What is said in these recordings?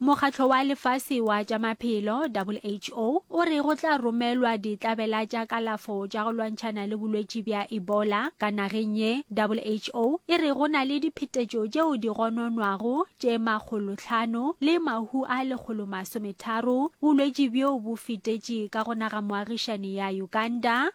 Mokgatlo wa Lefase wa tša Maphelo, WHO, o re go tla romelwa ditlabela tša kalafo tša go lwantšhana le bolwetši bja Ebola ka nageng ye. WHO e re go na le diphetetšo tšeo di gononwago tše makgolohlano le mahu a lekgolomasometharo. Bolwetši bjo bo fetetše ka go naga moagišani ya Uganda.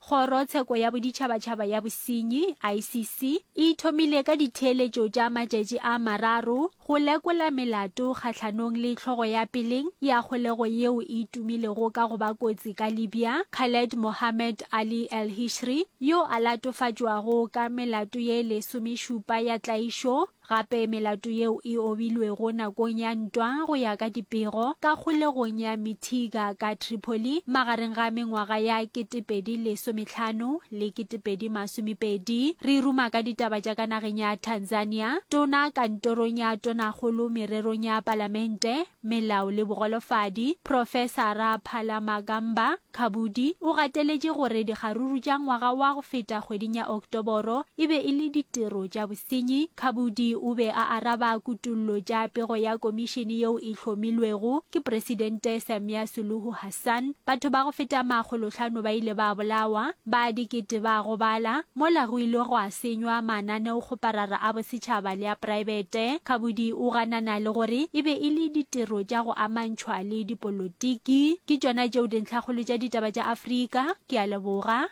Kgoro tsheko ya Boditšhabatšhaba ya Bosenyi, ICC, e ithomile ka ditheeletšo tša matšatši a mararo go lekola melato kgahlanong le hlogo ya peleng ya kgolego yeo e tumilego ka go ba kotsi ka Libya, Khaled Mohammed Ali El-Hishri, yo a latofatšwago ka melato ye lesomešupa ya tlaišo Gape melato yeo e obilwego nakong ya ntwa go ya ka dipego ka kgolegong ya Mitiga ka Tripoli magareng ga mengwaga ya ketepedi lesometlhano le ketepedi masomepedi. Re ruma ka ditaba tša ka nageng ya Tanzania, Tona kantorong ya Tonakgolo mererong ya Palamente, Melao le Bogolofadi, Profesara Phalamagamba Khabudi o gateletše gore dikgaruru tša ngwaga wa go feta kgweding ya Oktoboro e be e le ditiro tša bosenyi. Khabudi o be a araba kutollo tša pego ya komišene yeo e hlomilwego ke Presidente Samia Suluhu Sun, Batho ba go feta makgolohlano ba ile ba bolawa, ba dikete ba gobala, mola go ile gwa senywa mananeokgoparara a bosetšhaba le a praebete. Khabudi o ganana le gore e be e le ditiro tša go amantšhwa le dipolotiki. Ke tšona tšeo dintlhakgolo tša ditaba tša Afrika. Ke a leboga.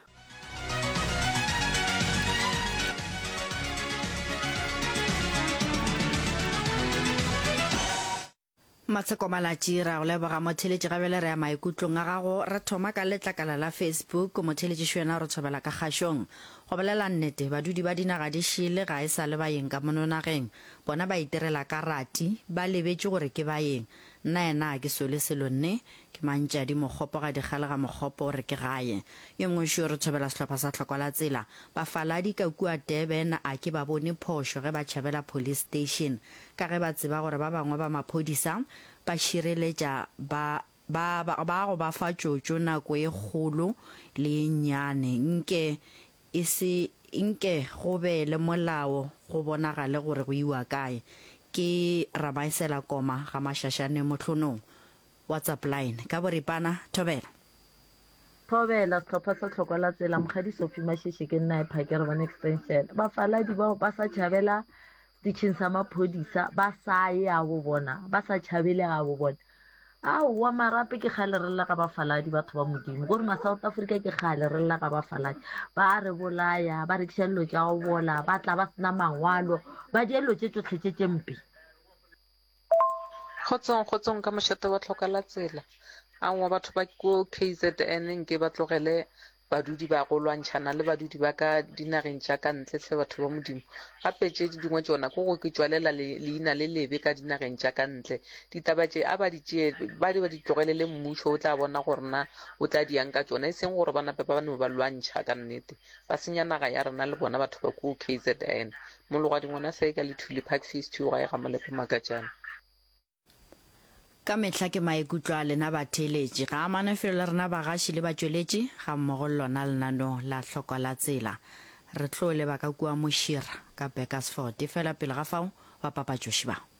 Matsheko Malatji, Re a go leboga motheeletši ga bjale re ya maikutlong a gago. Re thoma ka letlakala la Facebook. Motheeletši Šuena re tshobela ka kgašong. Go bolela nnete, badudi ba dinaga di šele ga e sa le baeng ka mono nageng. Bona ba itirela ka rati, ba lebetše gore ke baeng. Nnaena a ke sole selo nne, ke mantšadi mokgopo ga dikgale ga mokgopo o re ke gae. Yo mongwe šo re tshobela sehlopha sa hlokwa la tsela. Bafaladi ka kua Durban a ke ba bone phošo ge ba tšhabela police station. ka ge ba tseba gore ba bangwe ba maphodisa ba šireletša ba ba ba go ba fa tšotšo nako e kgolo le ye nnyane nke e se nke go be le molao go bonagale gore go iwa kae ke Ramaesela Koma ga Mashashane Mohlonong WhatsApp line ka boripana Thobela Thobela sehlopha sa tlhoko la tsela Mokgadi Sophie Masheshe ke nna e phakere bona extension bafaladi bao ba sa tšhabela Setšheng sa maphodisa ba sa ye a bo bona, ba sa tšhabele ga bo bona. Aowa marape ke kgale re lla ga bafaladi batho ba Modimo. Ko rona South Africa ke kgale re lla ga bafaladi. Ba a re bolaya, ba rekiša dilo tša go bola, ba tla ba sena mangwalo, ba dia dilo tše tšohle tše tše mpe. Kgotsong, kgotsong ka mošate wa tlhoka la tsela. Aowa batho ba ko KZN nke ba tlogele badudi ba go lwantšhana le badudi ba ka dinageng tša ka ntle hle batho ba modimo gape tše di dingwe tšona ko go ke tšwalela leina le lebe ka dinageng tša ka ntle ditaba tše a ba di tšee ba di ba di tlogelele mmušo o tla bona gore na o tla diyang ka tšona e seng gore ba nape ba no ba lwantšha ka nnete ba senya naga ya rena le bona batho ba ko kzn Mologadi ngwana se ka lethuli park face two gae ga molepo makatšana. Ka mehla ke maikutlo a lena batheeletši, ga a mane felo le rena bagaši le batšweletši ga mmogo le lona lenaneo la Hlokwa la Tsela. Re tlo leba ka kua Mošira ka Burkersford efela pele ga fao bapapatšoši ba.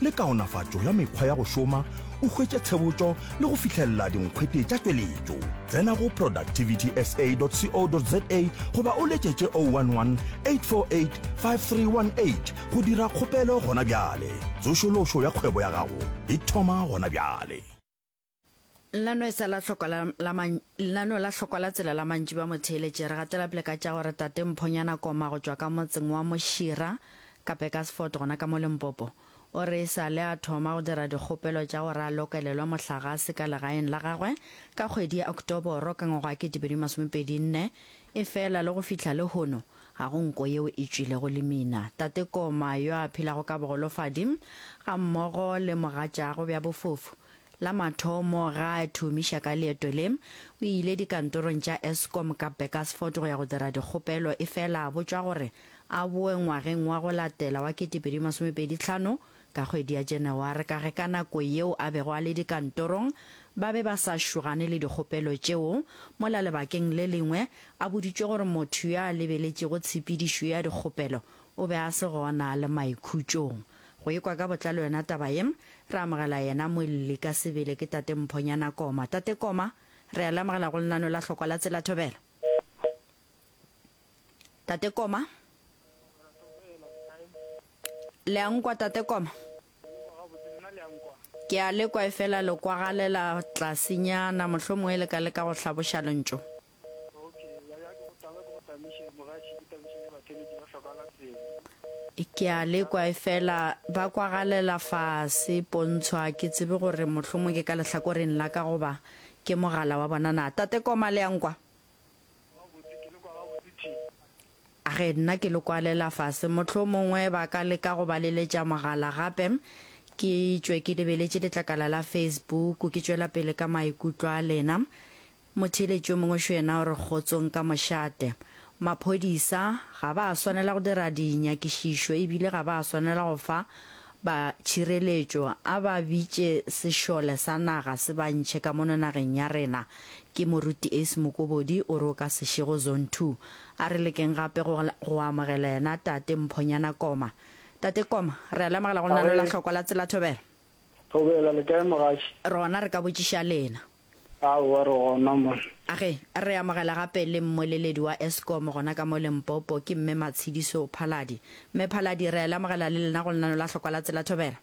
le kaonafatšo ya mekgwa ya go šoma o hwetše tshebotšo le go fihlelela dinkgwete tša tšweletšo tsena go productivitysa.co.za goba o letšetše 011 848 5318 go dira kgopelo gona bjale tsošološo ya kgwebo ya gago e thoma gona bjale Lenano e sa la hlokwa la, la man, lenano la hlokwa la tsela la mantši ba motheeletše. Re gatela pele ka tša gore Tate Mphonyana Koma go tšwa ka motseng wa Mošira, ka Pekasfort gona ka mo Limpopo, o re e sa le a thoma go dira dikgopelo tša gore a lokelelwe mohlagase ka legaeng la gagwe ka kgwedi ya Oktoboro ka ngwaga wa 2024, efela le go fihla lehono ga go nko yeo e tšwilego Limina. Tate Koma, yo a phelago ka bogolofadi gammogo le mogatšaagwe bja bofofu, La mathomo ga a thomiša ka leeto le, o ile dikantorong tša Eskom ka Backersford go ya go dira dikgopelo efela a botšwa gore a boe ngwageng wa go latela wa 2025 ka kgwedi ya Janaware ka ge ka nako yeo a bego a le dikantorong ba be ba sa šogane le dikgopelo tšeo, mola lebakeng le lengwe a boditšwe gore motho yo a lebeletšego tshepedišo ya dikgopelo o be a se gona le maikhutšong. Go ekwa ka botlalo yona taba ye, re amogela yena Moelli ka sebele ke Tate Mphonyana Koma. Tate Koma, re a le amogela go lenano la hlokwa la Tsela Thobela. Tate Koma? Le a nkwa Tate Koma? Ke a le kwa efela le kwagalela tlasenyana, mohlomongwe le ka leka go hlaboša lentšu. Ok, ya ya ke go taba ke go tamiše mogatši ke tamiše ya batheletši ba hlokahala pele. Ke a lekwa efela ba kwagalela fase pontshwa ke tsebe gore mohlomong ke ka lehlakoreng la ka goba ke mogala wa bona na Tate Koma le a nkwa? Gabotse ke le kwa gabotse Thing. A re nna ke le kwalela fase mohlomongwe ba ka leka go ba leletša mogala gape ke tšwe ke lebeletše letlakala la Facebook ke tšwela pele ka maikutlo a lena Motheeletši yo mongwe šo yena o re kgotsong ka mošate. Maphodisa ga ba a swanela go dira dinyakišišo e bile ga ba a swanela go fa ba tšhireletšo a ba bitše sešole sa naga se ba ntšhe ka mono nageng ya rena, ke Moruti Ace Mokobodi o re o ka se še go Zone Two. A re lekeng gape go go amogela yena Tate Mphonyana Koma. Tate Koma, re a le amogela go lenaneo la Hlokwa la Tsela Thobela. Thobela, le kae mogaši? Rona re ka botšiša lena. Aowa re gona mo. Age, re amogela gape le mmoleledi wa Eskom gona ka mo Limpopo, ke Mme Matshidiso Phaladi. Mme Phaladi, re a le amogela le lena go lenano la Hlokwa la Tsela Thobela.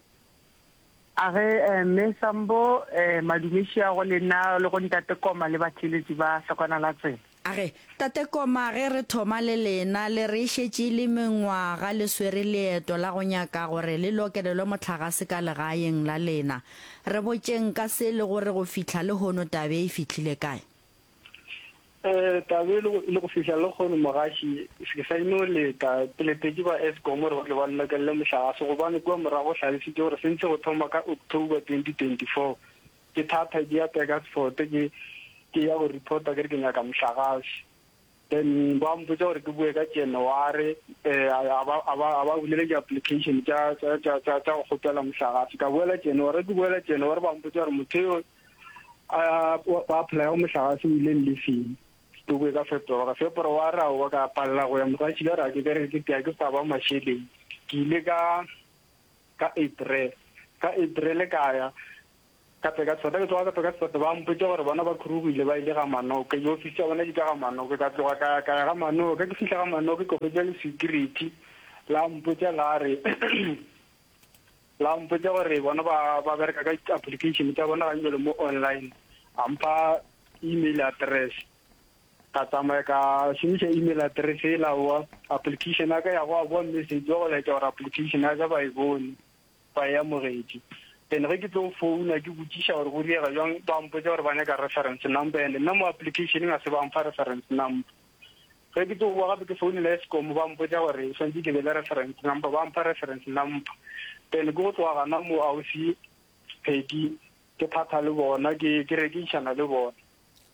Age, Mme Sambo, madumešiago lena le go Ntate Koma le batheeletši ba Hlokwana la Tsela. A re, Tate Koma, ge re thoma le lena, le re e šetše e le mengwaga le swere leeto la go nyaka gore le lokelelwe mohlagase ka legaeng la lena. Re botšeng ka se e lego re go fihla lehono tabe e fihlile kae? Ee, tabe e lego e le go fihla lehono, mogaši, ke sa e no leta. Ke letetše ba Eskom gore ba tle ba nlokelele mohlagase gobane kua morago go hlalošitšwe gore se ntše go thoma ka October 2024. Ke thatha ke ya Burgersfort ke ke ya go reporta ke re ke nyaka mohlagase. Then ba mpotsa gore ke boe ka January a ba a ba a ba bulela di application tša tša tša tša tša go kgopela mohlagase. Ka boela January ke boela January ba mpotsa gore motho yo a ba apply mohlagase o ile lefeng. Ke boe ka February February a wa ka palela go ya mogatšila ra ke ke re ke ke ke sa ba mašeleng ke ile ka ka Edre, ka Edre le ka ya, ka tle ka Sefate, ke tloga ka tle ka Sefate, ba mpotša gore bona ba khurugile ba ile ga Manoke, di ofisi tša bona di ka ga Manoke, ka tloga ka ya, ka ya ga Manoke, ke fihla ga Manoke ka hwetša le security la mpotša la re la mpotša gore bona ba ba bereka ka di-application tša bona gantšwale mo online, a mpha email address. Ka tsamaya ka šomiša email address yela wa application ya ka ya go a boa message wa go laetša gore application ya ka ba e bone, ba e amogetše. Then ge ke tlo founa ke botšiša gore go diega bjang, ba mpotša gore ba nyaka reference number and nna mo application-eng ga se ba mpha reference number. Ge ke tlo boa gape ke founela Eskom ba mpotša gore ke swantše ke be le reference number, ba mpha reference number. Then ke go tloga gana moo Ausi Peggy ke thatha le bona, ke ke rekišana le bona.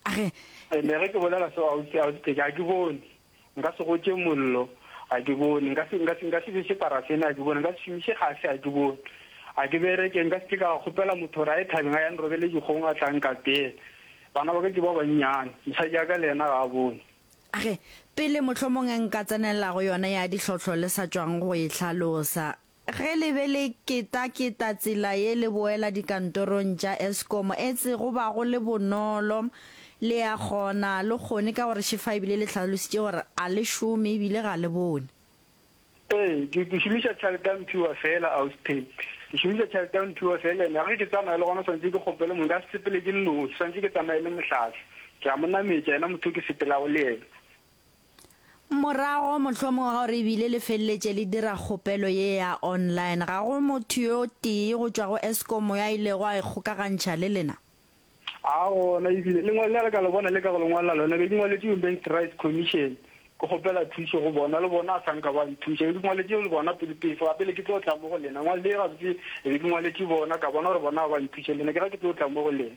A re. Ene ge ke bolela seo, ausi, ausi Teke, ga ke bone. Nka se gotše mollo, ga ke bone. Nka se, nka se, nka se bese parafene, ga ke bone. Nka se šomiše gase, ga ke bone. Ga ke bereke, nka se ke ka kgopela motho gore a ye thabeng a ya nrobele dikgong a tla nkapela. Bana ba ka ke ba bannyane, mosadi wa ka le yena ga a bone. A re, Pele mohlomong nka tsenelela go yona ya dihlohlo le sa tšwang go e hlalosa. Ge le be le ketaketa tsela ye le boela dikantorong tša Eskom etse go ba go le bonolo, le a kgona le kgone ka gore šefa ebile le hlalositše gore a le šome ebile ga le bone. Ee, ke, ke šomiša tšhalete ya Mphiwa feela, Auspay. Ke šomiša tšhalete ya Mphiwa feela, ene ge ke tsamaya le gona swanetše ke kgopele mong, nka se sepele ke nnoši, swanetše ke tsamaye le Mohlahli, ke a mo nametša, yena motho o ke sepelago le yena. Morago, mohlomongwe ga gore e bile le feleletše le dira kgopelo ye ya online, ga go motho yo tee go tšwa go Eskom yo a ilego a ikgokagantšha le lena? A gona, e bile lengwalo le re ka le bona le ka go le ngwala lona be ke ngwaletše Human Rights Commission ke kgopela thušo go bona, le bona a sa nka ba nthuša. Be ke ngwaletše le bona pele pefo, gape le ke tlo tla mo go lena. Ngwalo ye gabotse e be ke ngwaletše bona, ka bona gore bona ga ba nthuše, le nna ke re ke tlo tla mo go lena.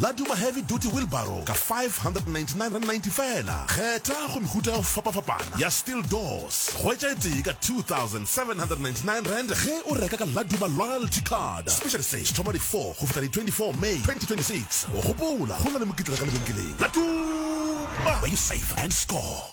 La Duma Heavy Duty Wheelbarrow ka R599.90 feela. Kgetha go mehuta ya go fapafapana ya steel doors. Hwetša e tee ka R2,799 ge o reka ka La Duma Loyalty Card. Special Stage thoma di 4 go fihla di 24 May 2026. Gopola, go na le mokitla ka lebenkeleng. La Duma! Where you save and score.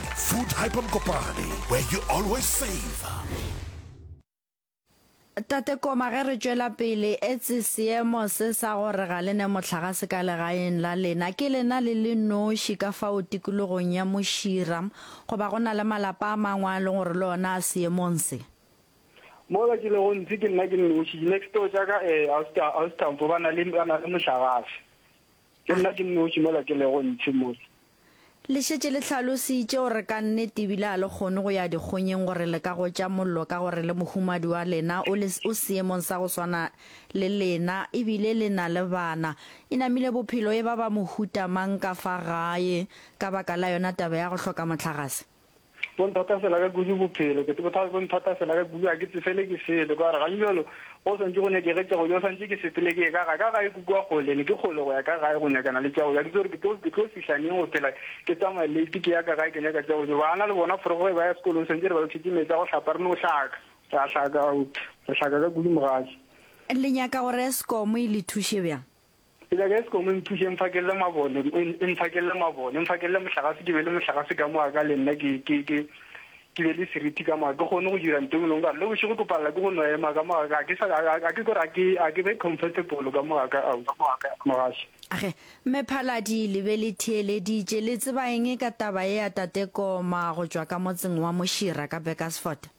Food Hyper Mokopane, where you always save. Tate Koma ge re tšwela pele etse seemo se sa gore ga le ne mohlagase ka legaeng la lena ke lena le le noši ka fao tikologong ya Mošira goba go na le malapa a mangwe a leng gore le ona a seemong se mola ke lego ntse ke nna ke noši next door tša ka um eh, ausi Tamfo ba na le mohlagase Ke nna ke nnoši mola ke lego ntši mo. Le šetše le hlalositše gore ka nnete e bile ga le kgone go ya dikgonyeng gore le ka gotša mollo ka gore le mohumadi wa lena o le o seemong sa go swana le lena e bile le na le bana. E namile bophelo e ba ba mohuta mang ka fa gae ka baka la yona taba ya go hloka mohlagase? bo nthata fela ka kudu bophelo ke bothata bo nthata fela ka kudu ga ke tsefele ke sele ka gore ga jalo go swantse go nyake ge tšago jo swantse ke sepele ke ka ga ka gae kukua kgole ne ke kgole go ya ka gae go nyakana le tšago ja ke tsore ke tlo ke tlo fihlaneng go phela ke tsamaye late ke ya ka gae ke nyaka tšago jo ba ana le bona forogo e ba ya sekolong swantse re ba lokhetse metsi a go hlapa re no hlaka ra hlaka out re hlaka ka kudu mogadi le nyaka gore eskom e le thushe bjang Ke nyaka Eskom e nthuse e mphakelele mabone, e mphakelele mabone, e mphakelele mohlagase ke be le mohlagase ka moka ka le nna ke ke ke ke be le seriti ka moka ke kgone go dira ntho engwe ka le bošego ke palela ke go no ema ka moka ga ke sa ga ke gore ke a ke be comfortable ka moka ka au mogashe Age, Mme Phaladi le be le theeleditše, le tseba eng ka taba ea Tate Koma go tšwa ka motseng wa Mošira ka Burkersfort?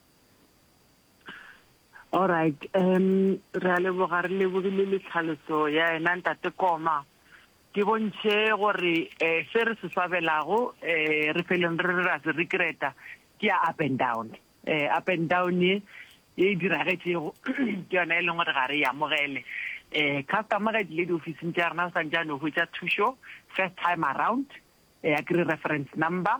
Alright um re a leboga re lebogile le tlhaloso ya ena ntate Koma ke bontšhe gore um se re se swabelago um re feleng re re ra se regreta ke ya up and down um up and down ye e e diragetšego ke yona e leng gore ga re e amogele um customer ga e tlile diofising tša rena o santšane o hwetša thušo first time around um ya kry reference number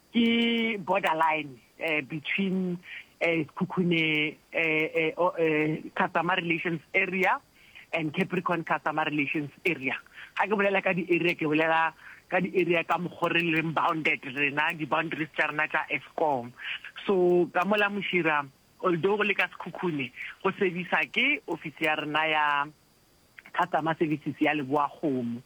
Ke borderline between Sekhukhune Customer Relations Area and Capricorn Customer Relations Area. Ga ke bolela ka di-area ke bolela ka di-area ka mokgwa o re leng bounded rena, di-boundaries tša rena tša Eskom. So ka mo la Mošira, although go le ka Sekhukhune, go service-a ke ofisi ya rena ya. customer services ya leboakgomo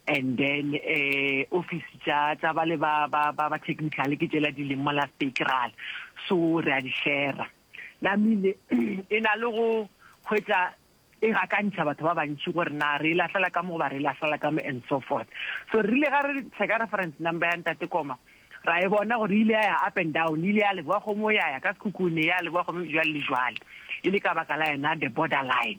and then um office tša tša bale ba ba ba ba technical ke tšela di leng mo la spectral so re a di share la mile e na le go hwetsa e ga ka ntsha batho ba bantši gore na re e lahlela ka mo ba re e lahlela ka mo and so forth so re rile ga re tsheka reference number ya ntate koma ra e bona gore ile ya ya up and down ile ya leboa gomo ya ya ka sekhukhune ya leboa gomo jwale le jwale e le ka baka la yena the borderline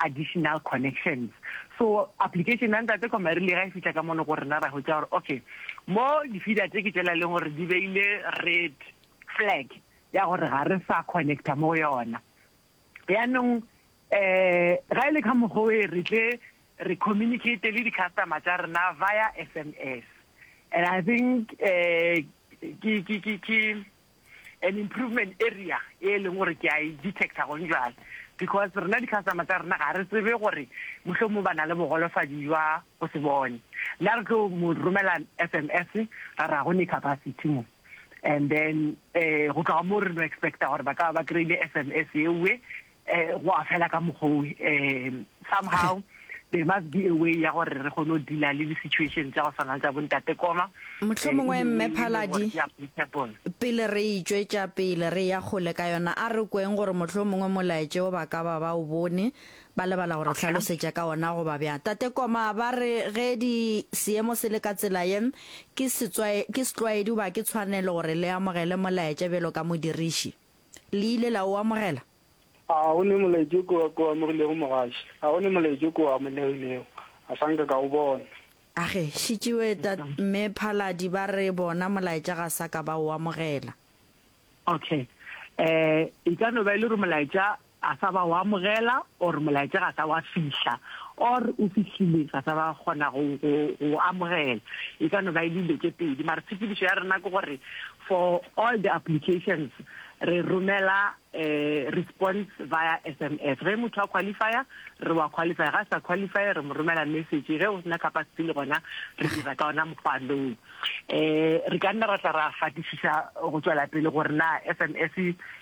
additional connections. So application ya ntate Komari le ga e fihla ka mono go rena ra hwetša gore okay mo di feeder tse ke tšela leng gore di beile red flag ya gore ga re sa connecta mo go yona yaanong um ga e le ka mokgwa e re tle re communicate le di-customer tša rena via sms and i think um ke an improvement area e e leng gore ke a e detecta gone jale because rena di-customer tsa rena ga re tsebe gore mohlomong ba na le bogolofadi jwa go se bone nna re tlo mo romela s m s ra ra go ne capacity mo and then um go tloga mo re no expecta gore ba tla ba kry-ile s m s eoe eh go a fela ka mogou eh somehow there must be a way ya gore re kgone go deala le di-situation tsa go tshwana tsa bontate koma motlho mongwe mme phaladi pele re itswetša pele re ya kgole ka yona a re kweng gore motlho mongwe molaetse o ba ka ba ba o bone ba lebala gore tlhalosetša ka ona go ba bjang tate koma ba re ge di seemo se le ka tsela ye ke setlwaedi goba ke tshwanelo gore le amogele molaetša bjalo ka modiriši Le ile la o amogela? A go ne molaetšo ko o amogilego, mogaši? A go ne molaetšo ko o amolegilego? A sa nka ka o bona. A ge, šetšiwe, Tat. Mme Phaladi ba re bona molaetša ga sa ka ba o amogela. Okay. E ka no ba e le gore molaetša ga sa ba o amogela or molaetša ga sa wa fihla or o fihlile ga sa ba kgona go go amogela e ka no ba e le dilo tše pedi mara tshepedišo ya rena ke gore for all the applications re romela um response via sms ge motho a qualifya re wa qualifya ga a sa qualify re mo romela message ge o sena capacity le gona re dira ka ona mokgwa loo um re ka nna ra tla ra fatisisa go tswela pele gore na sms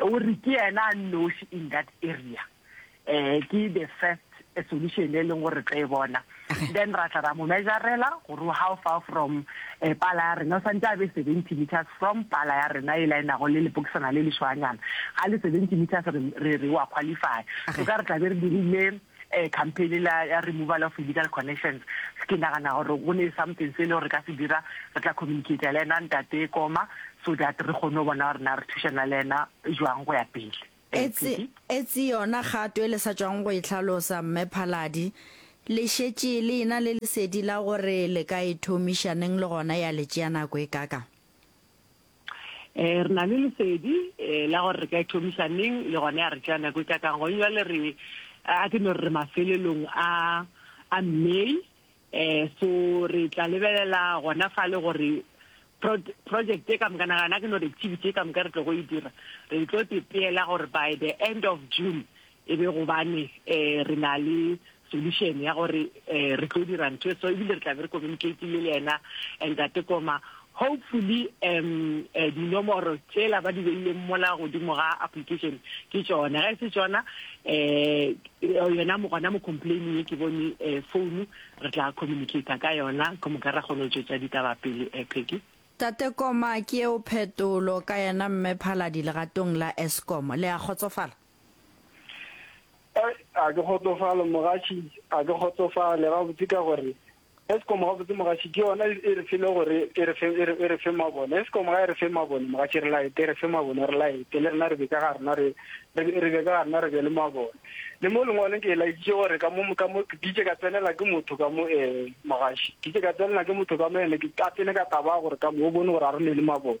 o re ke yena a nnoši in that area um ke the first solution e leng gore re tlo e bona then ra tla ra mo measurela gore how far from um pala ya rena o santse a be seventy meters from pala ya rena e laenago le lepokisana le lešwanyana ga le seventy meters re re wa qualify so ka re tlabe re dirile um campaign la ya removal of illegal connections, ke nagana gore go ne something se e le gore re ka se dira, re tla communicate-a le ena Ntate Koma so that re kgone go bona gore na re thušana le ena jwang go ya pele. Etse, etse yona kgato e le sa tšwago go e hlalosa, Mme Phaladi. Le šetše le ena le lesedi la gore le ka e thomiša neng le gona ya le tšea nako e kaakang? Re na le lesedi la gore re ka ithomiša neng, le gona ya re tšea nako e kakang. Gone bjale re, a ke no re re mafelelong a, a May. So re tla lebelela gona fale gore project ye ka moka, nagana a ke no re activity ye ka moka re tlogo e dira, re tlo tepeela gore by the end of June e be gobane um re na le solution ya gore um re tlo dira ntho e so ebile re tla be re communicatile le yena ntate koma hopefully um eh, dinomoro tsela ba di beileng mola godimo ga application ke tsone ga e se tsona um yona gona mo complaining e ke bone um founu re tla communicata ka yona ke moka ra kgone go tswetsa ditaba pele um peki tate koma ke eo phetolo ka yena mme phaladi legatong la escom le a kgotsofala A ke kgotsofale mogaši a ke kgotsofale gabotse ka gore Eskom gabotse mogaši ke yona e re file gore e re fe e re e re fe mabone Eskom ga e re fe mabone mogaši re laete e re fe mabone re laete le rena re be ka ga rena re re be ka ga rena re be le mabone le mo lengwaleng ke laeditše gore ka mo ka mo ditše ka tsenela ke motho ka mo eh mogaši ditše ka tsenela ke motho ka mo ene ke ka tsene ka taba gore ka mo o bone gore a re ne le mabone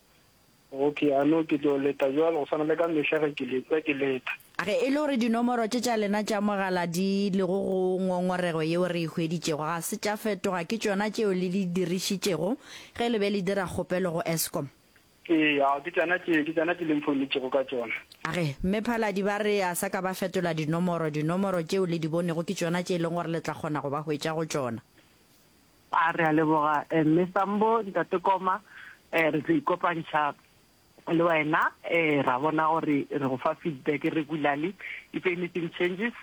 Okay, a no ke tlo leta bjalo go swana le ka mehla ge ke letša ke leta. Ge e le gore dinomoro tše tša lena tša mogala di lego go ngongorego yeo re e hweditšego ga se tša fetoga, ke tšona tšeo le di dirišitšego ge le be le dira kgopelo go Eskom? Ee, ao ke tšona tše, ke tšona tše le mphounetšego ka tšona. Age Mme Phaladi ba re a sa ka ba fetola dinomoro, dinomoro tšeo le di bonego ke tšona tše e leng gore le tla kgona go ba hwetša go tšona? A re a leboga Mme Sambo, Ntate Koma re tlo ikopantšha le wena ra bona gore re go fa feedback regularly if anything changes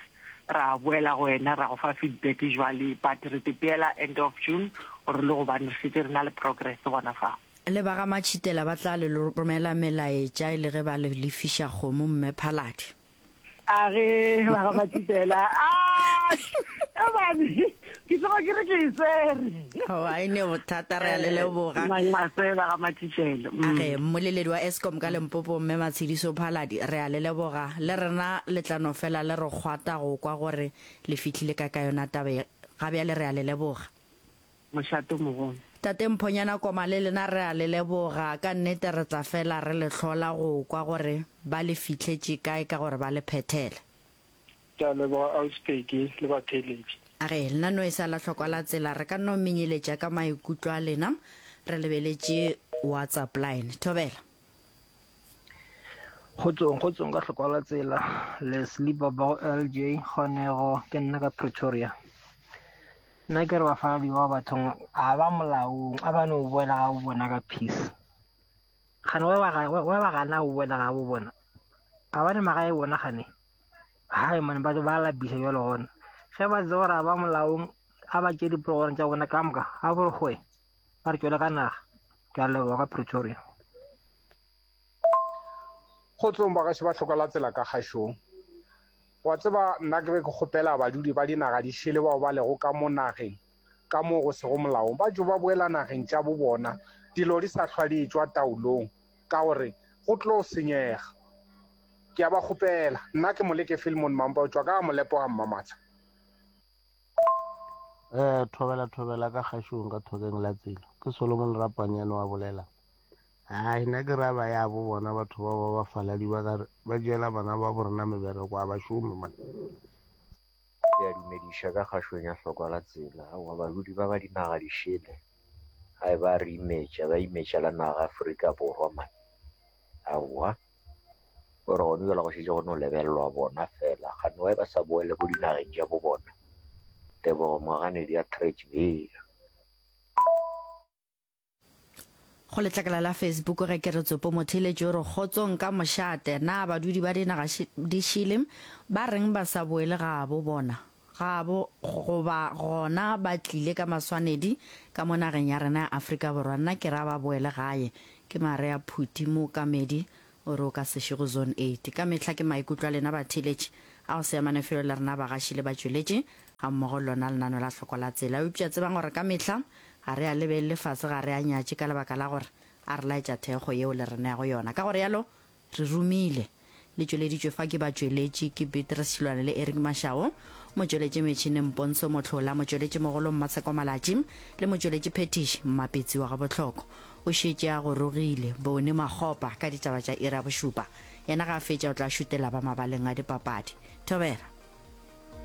ra boela go wena ra go fa feedback jwale but re te peela end of June gore le gobane re šetše re na le progress gona fa. Le ba ga Matšhitela ba tla le romela melaetša e le ge ba le lefiša kgomo Mme Phaladi. a ge ba ga matipela a ebane ke tsoga ke re ke e tsere oa e ne bothata re a le leboga masela ga matipelo a ge mm. mmoleledi wa escom ka lempopo mme matshediso phaladi re a le leboga le rena letlano fela le re kgwata go kwa gore le fitlhile ka ka yona taba e. ga bjale re a le leboga mošato mogolo. Tate Mphonyana Koma le lena re a le leboga, ka nnete re tla fela re le hlola go kwa gore ba le fihletše kae ka gore ba le phethele. Ke a leboga Ausi Peggy le batheeletši. A re, lena no e sa la hlokwa la tsela, re ka no menyeletša ka maikutlo a lena re lebeletše WhatsApp line. Thobela. Kgotsong, kgotsong ka hlokwa la tsela, Leslie Babao LJ Kgonego, ke nna ka Pretoria. Nna ke re bafaladiwa ba bathong a ba molaong a ba ne o boela ga bo bona ka peace gane wa ba gana o boela ga bo bona ga ba ne magae bona gane hai mane ba ba labisa jalo gona ge ba tse gore a ba molaong a ba tše dipologoreng tša bona ka moka a bore goe ba re tšwele ka naga ke a leboga ka pretoria go tsong ba gaše ba tlhoka la tsela ka gašong Wa tseba, nna ke be ke kgopela badudi ba dinaga di šele bao ba lego ka mo nageng ka mo go sego molaong ba tšo ba boela nageng tša bo bona dilo di sa hlwa di etšwa taolong ka gore go tlo senyega. Ke a ba kgopela. Nna ke Moleke Filmon Mampa o tšwa ka ga Molepo ga Mmamatsha. Ee, thobela, thobela ka kgašong ka thokeng la tsela. Ke Solomon Rapanyane wa bolelang. Hai, nna ke ra ba ya bo bona batho bao ba bafaladi ba ka re ba tšeela bana ba bo rena mebereko, a ba šome monna. Ke a dumediša ka kgašong ya hlokwa la tsela. Aowa, bahudi ba ba dinaga di šele, hai, ba a re imetša, ba imetšela naga Afrika Borwa man. Aowa, o re gone bjalo go šetše go no lebelelwa bona fela, kgane why ba sa boele ko dinageng tša bo bona. Tebogo Moganedi Atteridgeville. Go letlakala la Facebook ge ke re tsopo motheletši o re kgotsong ka mošate na badudi ba dinaga di šele ba reng ba sa boele gabo bona gabo goba gona ba tlile ka maswanedi ka mo nageng ya rena ya Afrika Borwa nna ke ra ba boele gae ke marea phuti mookamedi O re o ka se še go Zone Eight. Ka mehla ke maikutlo a lena batheeletši a go se amane felo le rena bagaši le batšweletši gammogo le lona lenano la hloko la tsela. Eupša tsebang gore ka mehla ga re a lebelele fase, ga re a nyatše ka lebaka la gore a re laetša thekgo yeo le re neago yona. Ka go realo re romile. Le tšweleditšwe fa ke batšweletši, ke Beatrice Šilwane le Eric Mashao, motšweletši metšhineng Pontsho Mohlola, motšweletšimogolo Mmatsheko Malatši le motšweletšiphethiši Mmapitsi wa Gabohloko. O šetše a gorogile, bone makgopa ka ditaba tša iri ya bošupa. Yena ga a fetša o tla šutela ba mabaleng a dipapadi. Thobela.